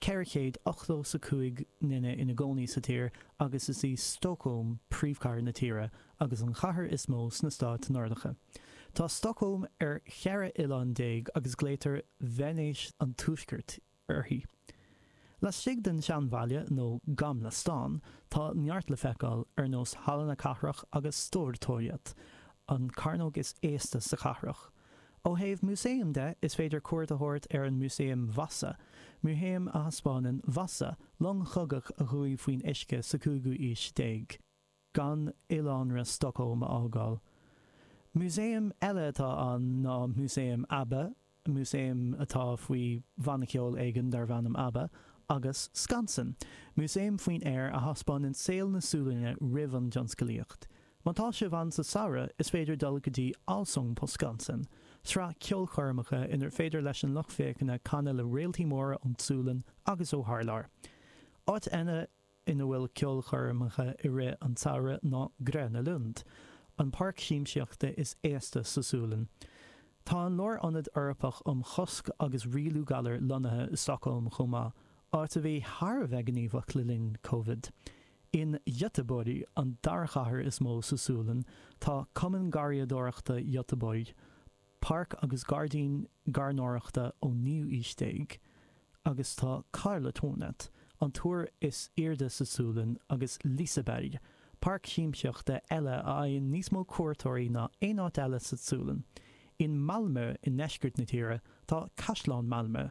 485 nduine ina gcónaí sa tír agus is í Stócólm príomhchathair na tíre agus an chathair is mó sna Stáit Nordacha. Tá Stócólm ar cheithre oileán déag agus glaotar Veinéis an Tuaiscirt uirthi. Laistigh den seanbhaile, nó Gamla stan, tá neart le feiceáil ar nós Halla na Cathrach agus Stortorget, an cearnóg is aosta sa chathrach. Ó thaobh músaeim de, is féidir cuairt a thabhairt ar an Músaem Vasa, músaem a thaispeánann Vasa, long chogaidh a chuaigh faoin uisce sa cúigiú haois déag, gan oileánra Stockholm a fhágáil. Músaem eile atá ann ná Músaem Abba, músaem atá faoi bhanna ceoil éigin darb ainm Abba, agus Skansen, músaem faoin aer a thaispeánann saol na Sualainne roimh an dtionscalaíocht. Má tá sibh ann sa tsamhradh, is féidir dul go dtí Allsång på Skansen, sraith ceolchoirmeacha inar féidir leis an lucht féachana canadh le réaltaí móra ón tSualainn agus ó thar lear. Áit eile ina bhfuil ceolchoirmeacha i rith an tsamhraidh ná Gröna Lund, an páirc siamsaíochta is aosta sa Sualainn. Tá an Lárionad Eorpach um Chosc agus Rialú Galar lonnaithe i Stockholm chomh maith, áit a bhí thar a bheith gníomhach le linn Covid. In Göteborg, an dara chathair is mó sa Sualainn, tá Cumann Garraíodóireachta Göteborg, páirc agus gairdín gairneoireachta ón naoú aois déag, agus tá Karlatornet, an túr is airde sa Sualainn, agus Liseberg, páirc siamsaíochta eile a fhaigheann níos mó cuairteoirí ná aon áit eile sa tSualainn. In Malmö, i ndeisceart na tíre, tá Caisleán Malmö,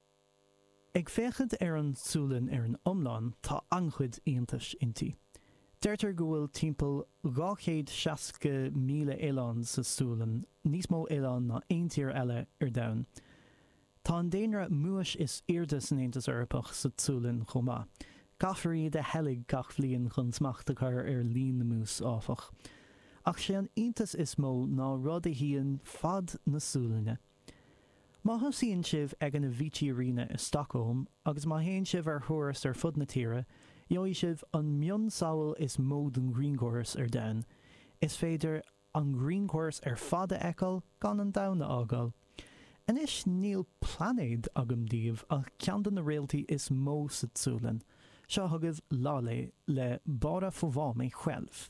Ag féachaint ar an tSualainn ar an iomlán, tá an-chuid iontais inti. Deirtear go bhfuil timpeall 260,000 oileán sa tSualainn, níos mó oileán ná aon tír eile ar domhan. Tá an daonra múis is airde san Aontas Eorpach sa tSualainn chomh maith. Caithfear iad a sheilg gach bliain chun smacht a chur ar líon na mús, áfach. Ach sé an iontas is mó ná rud a shuíonn fad na Sualainne. Má thosaíonn sibh ag an Avicii Arena i Stockholm agus má théann sibh ar thuras ar fud na tíre, gheobhaidh sibh an mionsamhail is mó den ghrianchóras ar domhan. Is féidir an grianchóras ar fad a fheiceáil gan an domhan a fhágáil. Anois níl plainéad agam daoibh ach ceann de na réaltaí is mó sa tSualainn. Seo chugaibh Laleh le Bara få va mig själv.